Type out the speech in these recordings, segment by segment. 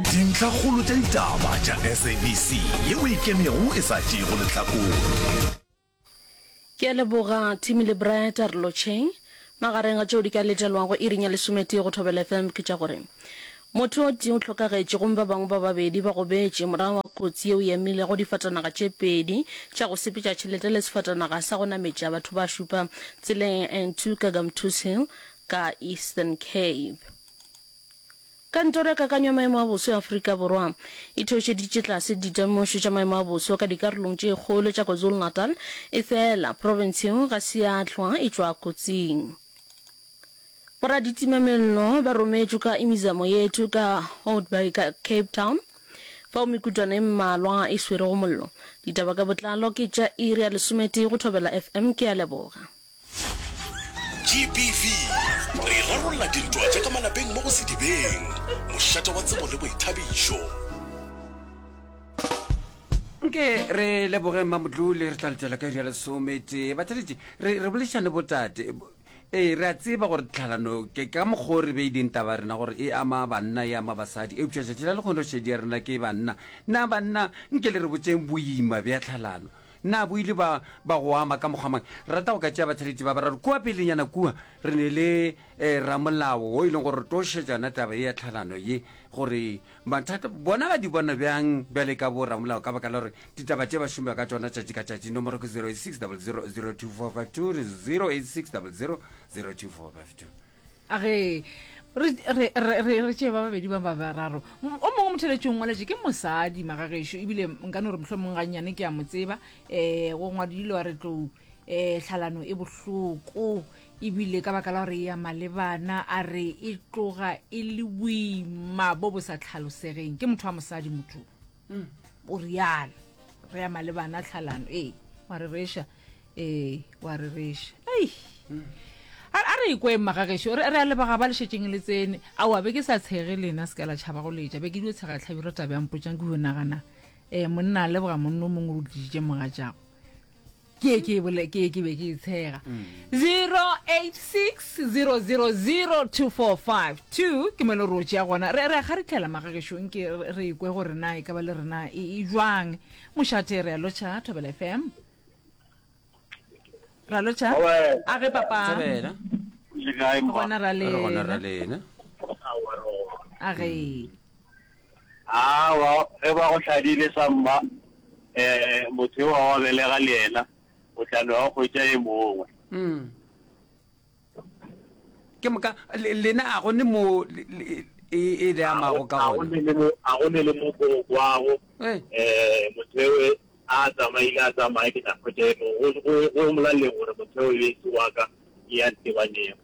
Dintlhakgolo tša ditaba tša SABC ye o e kemego e sa tšeego lehlakore. Ke a leboga Timmy le Brett re lo che. Magareng ga tšeo di ka letelwago iring ya lesometee go Thobela FM ke tša gore, Motho o tee o hlokagetše gomme ba bangwe ba babedi ba gobetše morago ga kotsi yeo e amilego difatanaga tše pedi tša go sepetša tšhelete le sefatanaga sa go nametša batho ba šupa tseleng ya N2 ka Gamtoos Hill ka Eastern Cape. Kantoro ya Kakanyo ya Maemo a Boso ya Afrika Borwa e theošeditše tlase ditemošo tša maemo a boso ka dikarolong tše kgolo tša KwaZulu-Natal, efela profense yeo ga se ya hlwa e tšwa kotsing. Boraditima-mello ba rometšwe ka Imizamo Yethu ka Houtbaai ka Cape Town, fao mekutwana e mmalwa e swerego mollo. Ditaba ka botlalo ke tša iri ya lesometee go Thobela FM. Ke a leboga. GBV, Re rarolla dintwa tša ka malapeng mo go Sedibeng, mošate wa tsebo le boithabišo. Nke re leboge Mmamodlole, re tla letšwela ka iri ya lesometee. Batšaletši, re, re boledišane botate. Bo, ee, re a tseba gore tlhalano ke ka mokgwa o re beileng taba ya rena gore e ama banna, e ama basadi, eupša tšatši la lekgonošedi ya rena ke banna. Na banna, nke le re botšeng boima bja tlhalano. Na bo ile ba, ba go ama ka mokgwa mang? Rata go ka tšea batheletši ba bararo kua pelenyana kua. Re ne le eh, ramolao wo e leng gore re tlo šetša yona taba ye ya tlhalano ye, gore mathata bona ba di bona bjang bjale ka bo ramolao, ka baka la gore ditaba tše ba šomba ka tšona tšatši ka tšatši. Nomoro ke 0860002452, re 0860002452. a ge re re re re re tšee ba babedi ba ba bararo M- o mongwe motheletšong ngwaletše ke mosadi magagešo ebile nka no re mohlho mongwe gannyane ke a mo tseba um go ngwadile wa re tlou um tlhalano e bohloko ebile ka baka la gore ya malebana a re e tloga e le boima bo bo sa tlhalosegeng ke motho wa mosadi motho mm, o rialo re ya malebana tlhalano ee wa re reša ee wa re reša ei mm. a a re ikwe mmagagešo re re a lebaga ba lešetšeng le tsene aowa be ke sa tshege lena se ka la tšhaba go letša be ke dio tshega tlhabi re tabe ya mpotšang ke go nagana um monna a leboga monno mongwe o tlisitše moga jago ke ye ke e bole ke ye ke be ke e tshega 0860002452 ke mone ro tšea gona re re ga re tlhela magagešong ke re- re ikwe gore na e ka ba le rena e e jwang mošate re a lotšha thobela fm ra lotšha Owe. a ge papa Thobela. le kae mma gona ra Re gona ra lena lena a ge Aowa, ge ba go hladile sa mma, um motho yo wa wa belega le yena, o tla no ya go hwetša e mongwe. Mm. Ke moka, le, lena a go ne mo le, le, e, e le amago ka gona? A go ne le mo go kwago, um motho yo a tsamaile a tsamaye ke tla hwetša e mongwe, go, go, go molaleng gore motho yo e se wa ka, ya ntebanego.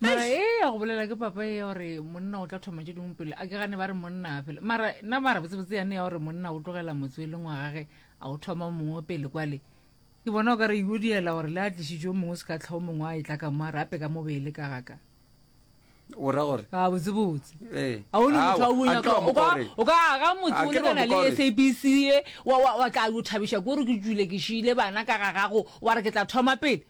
mara e ya go bolela ke papa e ya gore monna o tla thoma tše dingwe pele a ke gane ba re monna a fele mara nna mara botsebotse yane ya gore monna o tlogela motse e leng wa gage a o thoma mongwe pele kwale ke bona o ka re yo diela gore le a tlisitso mongwe se ka tlhao mongwe a e tla ka mo a re ape ka mo beele ka gaka o ra gore a botsebotse Eh, a o le motho wa aowa, bonya a ke wa mo gore. o ka aga motse A o ke wa lekana mo gore. le sabc e wa- wa wa tla o thabiša ko re ke tsule ke šile bana ka ga gago wa re ke tla thoma pele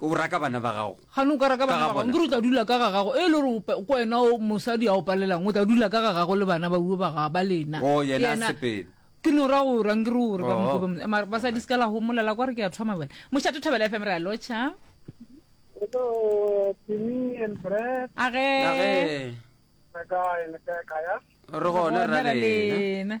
O raka bana ba gago. Gane o ka raka bana ba gago, ke re o tla dula ka ga gago. E le gore o ko wena o mosadi a o palelang, o tla dula ka ga gago le bana ba uwe ba ga ba lena. Oh, yena a sepele. Ke no ra go rang ke re gore ba mo gobe mara ba sa di skala ho molela kwa re ke ya thoma bona. Moshato Thabela FM re a locha. Hello, Timmy and Brad. Age. Age. Re gona ra lena.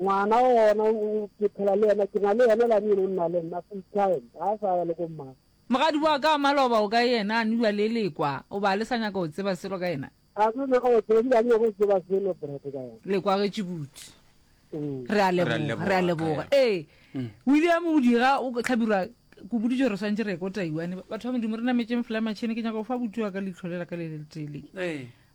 Ngwana o gona ke phela le yena, ke na le yena lane yeno nna le nna full time, ga a sa ya le ko mmang. Mogadi wa ka wa maloba o kae yena, a nua le Lekwa? O ba le sa nyaka go tseba selo ka yena? A tlo nyaka go tseba, ebile a nyaka go tseba selo brate ka yena. Lekwa ge Tšibutsi. Re a leboga, re a leboga. Ee, William o dira, o tlhabirwa, ke o boditše gore re swantše re ye ko Taiwane. Batho ba Modimo, re nametšeng fela matšhene, ke nyaka go fa abuti wa ka leihlo le la ka le le letee le.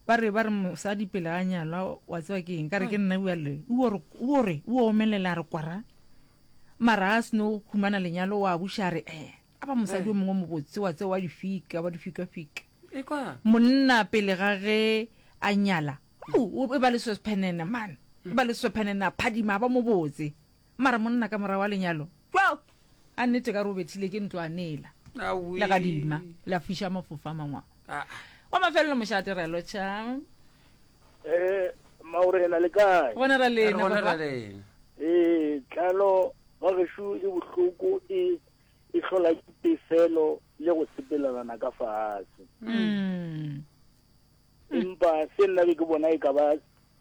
Ba re, ba re mosadi pele a nyalwa, wa tseba ke eng? Ka re, ke nna bua le. O re, o omelela, a re kwara. Mara a seno humana lenyalo, wa buša a re, ee, a ba mosadi o mongwe mobotse, wa tseba, wa difika, wa difikafika. Monna pele ga ge a nyala, o e ba le seswephenene, man, e ba le seswephenene, a phadima, a ba mobotse. Mara monna ka morago a lenyalo kua a nnete ka re o bethile ke ntlwanela legadima la fiša mafofa mangwa wa mafelelo mošate re lotšha eh, maurena le kae gona ra lena ee tlalo wa gešo e bohloko e e hlola ke pefelo le go sepelelana ka fatshe mm. empa se nna be ke bona e ka ba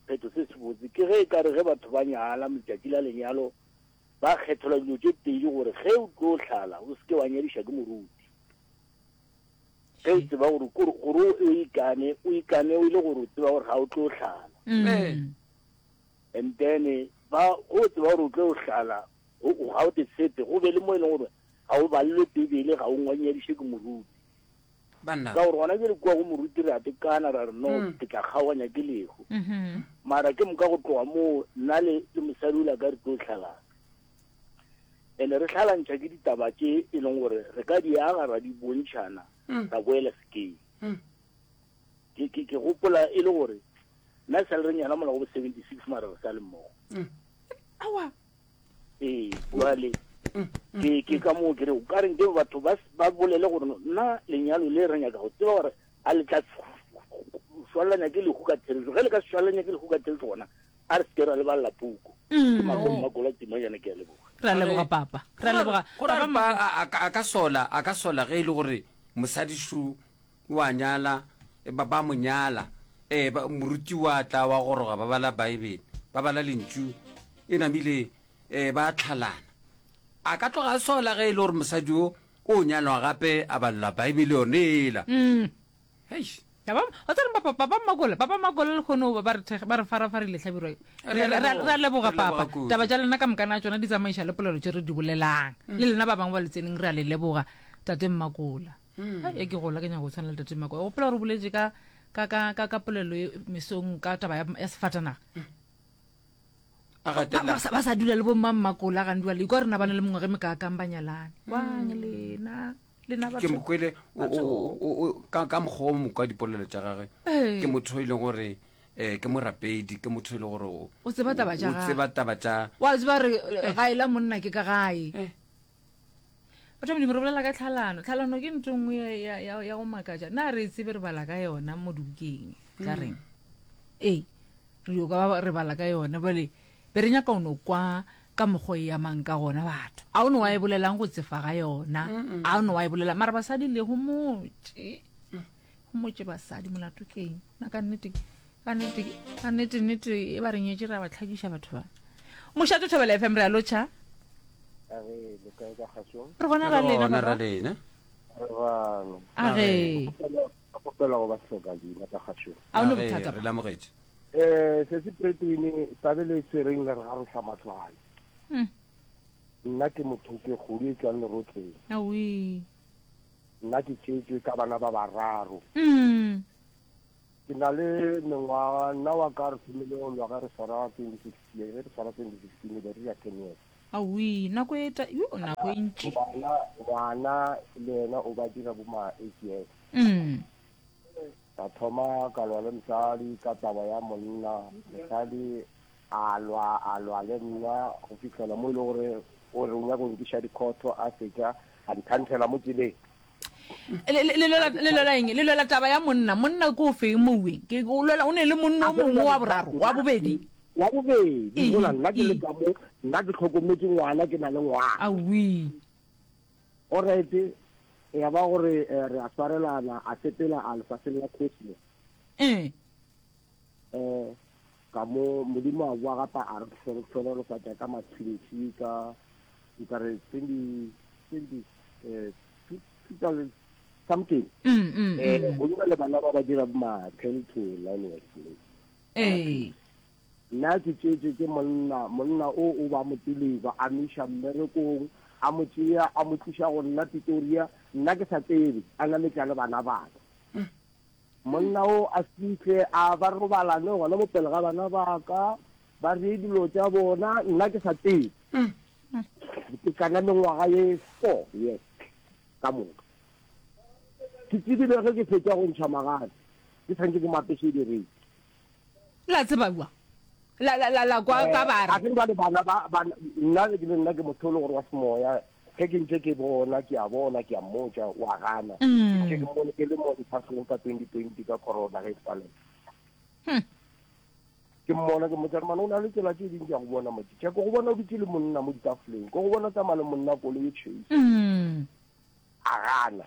Sephetho se sebotse ke ge e ka re ge batho ba nyala, letšatši la lenyalo ba kgethelwa dilo tše pedi gore ge o tlo hlala o se ke wa nyadiša ke moruti. Ge o tseba gore kore gore o ikane, o ikane o ile gore o tseba gore ga o tlo hlala. Mm. And then ba go tseba gore o tlo hlala ga o te sepe go be le mo e leng gore ga o balelwe Bibele ga o ngwanyadiše ke moruti. Banna. Ka gore gona jale kua go moruti re a tekana, ra re, No, ke tla kgaoganya ke lehu. Mara ke moka go tloga moo, nna le, le mosadi o la ka re tlo hlalana. Ene re hlalantšha ke ditaba tše e leng gore re ka di aga ra di bontšhana, ra boela sekeng. Ke, ke, ke gopola e le gore nna e sa le re nyala mola go bo 76 mara re sa le mmogo. Aowa. ee jwale ke ke ka moo kere o ka reng ke batho ba ba bolele gore nna lenyalo le re nyaka go tseba gore a le tla swalelanya ke lehu ka therešo ge le ka swalelanya ke lehu ka therešo gona a re seke ra lebalela puku ke makomo ba kola timo jana ke a leboga ra leboga papa ra leboga Go ra re ba a- a ka- a ka sola a ka sola ge e le gore mosadi shu O a nyala, ba, ba mo nyala. Ee, ba, moruti wa tla wa goroga, ba bala Baebele, ba bala Lentšu, e namile, ee, ba tlhalana. A ka tloga a sola ge e le gore mosadi o o nyalwa gape a balola Baebele yone ela. Mm. Heish. Ya ba, o tsere papa, papa Makola, papa Makola le kgono ba, ba re thekg, ba re farafarile hlabirwa yo. Re Re, a re, re, a- leboga. re a leboga Re a leboga papa. kudu. Taba tša lena ka moka na tšona di tsamaiša le polelo tše re di bolelang. Le lena ba bangwe ba le tseneng re a le leboga, tate Mmakola. e ke gola ke nyaka go tshwana le tate mako o pela re boletse ka ka ka ka ka polelo e mesong ka taba ya ya sefatanaga a Ba- gatela ba sa- ba sa dula le bommammakola gandi wa lekwa rena ba na le mongwe ge mekaakang ba nyalane wang lena lena ke batho mokwele o- o- o- o- o- ka ka mokgwa o mokwa dipolelo tša gage Ee. ke motho e leng gore um ke morapedi ke motho e leng gore o- O tseba taba tša o gagwe. tseba taba tša wa tseba re gaela monna ke ka gae batho ba modimo re bolela ka tlhalano tlhalano ke nto nngwe ya- ya- ya ya go makatša na re e tsebe re bala ka yona mo dibukeng tsa reng ee re yo ka ba- re bala ka yona bale be re nyaka o no kwa ka mokgwa e yamang ka gona batho a o ne wa e bolelang go tsefa ga yona a o ne wa e bolelang mara basadi le go motse mmotse basadi molato ke eng na ka nnete ka nnete ka nnete nnete e ba re nyetse ra ba tlhakiša batho ba mošate thobela fm re a lotšha re gona ra lena Gona ra baba. lena a re kgopela go ba hloka leina ka gašong a o ne Re- bothata re lamogetše um setse pretwene tabe le tsereng le re ga re hlamahlwane Mm. nna ke motho ke kgodu e tswang lerotleng awi Nna ke tšetšwe ka bana ba bararo. Umm. Ke na le mengwaga, nna wa ka re thomile go lwa ge re swara 2016, ge re swara 2016 e be re dira ten years. Awii, nako e ta, yoo, nako e ntši. Goba na ngwana le yena o ba dira bo ma eight years. Umm. Ka thoma ka lwa le mosadi ka taba ya monna, mosadi A lwa, a lwa le nna go fihlela mo e le gore o re o nyaka go nkiša dikhotho, a fetša a nthanthela mo tseleng. Le, le, le lwela, le lwela eng? Le lwela taba ya monna. Monna ke o feng moweng? Ke, o lwela, o ne le monna o mongwe wa boraro, wa bobedi. Wa bobedi, Ee, mola nna ke le ee. ka mo, nna ke hlokometse ngwana, ke na le ngwana. Awii. Orete, ya ba gore eh, re a swarelana, a sepela a lefaseng la Kosley. Ee. um ka mo modimo a boa gape a re hlorotshoro re sa tša ka matšhintšhi ka nkare twenty twenty um two thousand something um mm, mm, mm. go dira le bana ba ba dira ma ten to nine years old ee nna ke tšeetse ke monna monna o o ba mo tseleba a meša mmerekong a mo tšea a mo tliša go nna pitoria nna ke sa tsebe a nametla le bana baka Monna wo a fihle a ba robalane gona mo pele ga bana ba ka, ba reye dilo tša bona, nna ke sa tsebe. Ke kana mengwaga ye four yes ka moka. Ke tsebile ge ke fetša go ntšha magadi, ke tshwanetse ke mo apese direi. La tseba kua? La, la, la, la kwa ka bare. A ke re bjale bana ba, bana, nna, nna ke motho o le gore wa semoya, Ge ke ntše ke bona, ke a bona, ke a mmotša, o a gana. Ke ntše ke mmone ke le mo lefaseng ka 2020 ka corona ge e palelwa. Ke mmona, ke mmotša, Rmane, o na le tsela tše ding tša go bona motho. Tšhe, ko go bona o dutše le monna mo ditafoleng. Ko go bona o tsamaya le monna kolo ye tšhweu. A gana.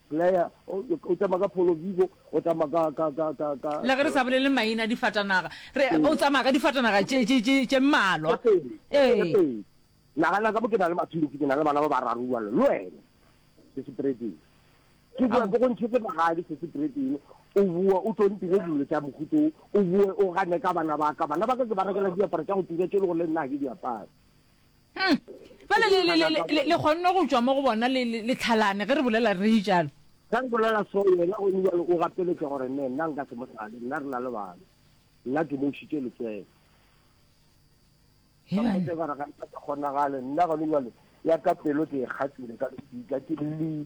Blair, o, o tšama ka Polo Vivo, o tšama ka, ka, ka, ka, ka. Le ge re sa bolele maina a difatanaga, re, o tsamaya ka difatanaga tše, tše, tše, tše mmalwa. Tše pedi, tše Ee. pedi. Nagana ka mo ke na le mathulusi, ke na le bana ba bararo bjalo, le wena, Sesi Bredin. Ke boa ke go ntšhetše magadi, Sesi Bredin, o boe o tlo ntire dilo tša mohuto wo, o boe o gane ka bana ba ka. Bana ba ka ke ba rekela diaparo tša go tura tše e lego le nna ga ke di apare. Hmm. Bale le, le, le, le, le kgonne go tšwa mo go bona le, le, le tlhalane ge re bolela re e jalo. Ka re bolela so yena o ne jalo o gapeletša gore ne nna nka se mo tlale nna re na le bana. Nna ke mo šitše letswele. He bana. Ke gore ga nka se kgonagale nna gone jalo ya ka pelo ke e kgatlile ka ka ke le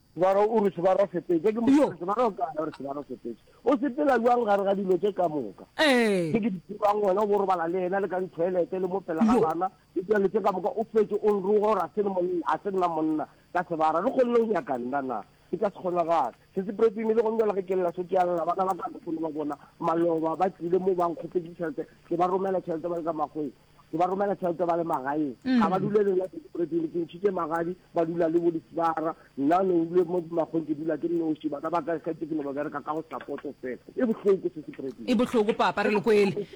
Ba re, O re sebarasepetša. Ke Yo. mosebetsi, ba re, O kae? O re sebarasepetša. O sepela bjang gare ga dilo tše ka moka? Ee. Tše ke di tsebang, wena o bo robala le yena le ka dithoelete le mo pela ga Yo. bana, le dilo tše ka moka, o fetše o nroga gore a se le monna, a se nna monna ka sebara. Re kgonne go nyaka nna na? E ka se kgonagale. Se se prepime le gone bjale ge ke lla se ke a lla, bana ba ka ke kgone go ba bona, maloba ba tlile mo ba nkgopetše tšhelete, ke ba romela tšhelete ba le ka makgweng. ke ba romela tšhelete ba le magaeng mm. ga ba dule le nna sepreteng ke ntšhitše magadi ba dula le bo disibara nna ne dule mo magong ke dula ke noši bana ba ka kgetse ke ne ba bereka ka go sapoto fela e bohloko se sepreteng e bohloko papa re lekwele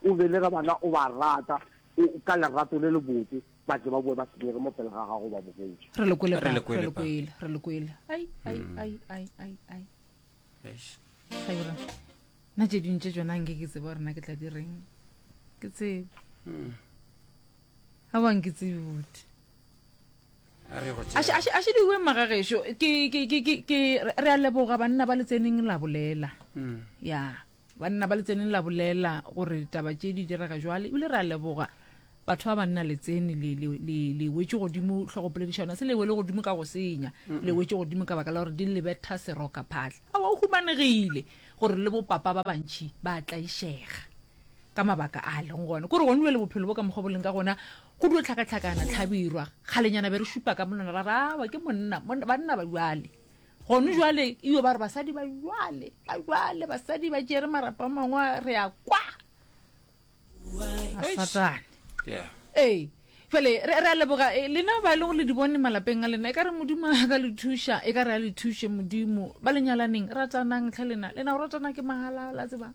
o belega bana o ba rata ka lerato le le botse ba tle ba boe ba senyege mo pele ga gago ba bogetše re lekwele re lekwele re lekwele ai ai ai ai ai nna tše dintše tsona nke ke tseba gorena ke tla di reng ke tsebe hmm. ga bang ke tsebe bote aše diwe magagešo re a leboga banna ba le tseneng la bolela hmm. ya Banna ba Letseneng la bolela gore ditaba tše di direga jwale, e bile re a leboga batho ba banna Letsene le, le, le, le wetše godimo hlogopolediša yona. Se le wele godimo ka go senya, le wetše godimo ka baka la gore di le betha serokaphahla. Aowa, go humanegile gore le bopapa ba bantši ba a tlaišega ka mabaka a lego gona. Ke gore gone bjale bophelo bo ka mokgwa bo leng ka gona, go dio hlakahlakana hlabirwa. Kgalenyana be re šupa ka monwana, ra re, Aowa, ke monna, monna, banna ba bjale. Gone jwale, iyo, ba re basadi ba jwale, ba jwale, basadi ba tšere marapa mangwe, re a kwa. A satane. Yeah. Ee. Fele, re, re a leboga, e, lena ba e lego le di bone malapeng a lena, e ka re modimo a ka le thuša, e ka re a le thuše modimo, ba lenyalaneng, ratanang tlhe lena, lena o ratana ke mahala, la tseba.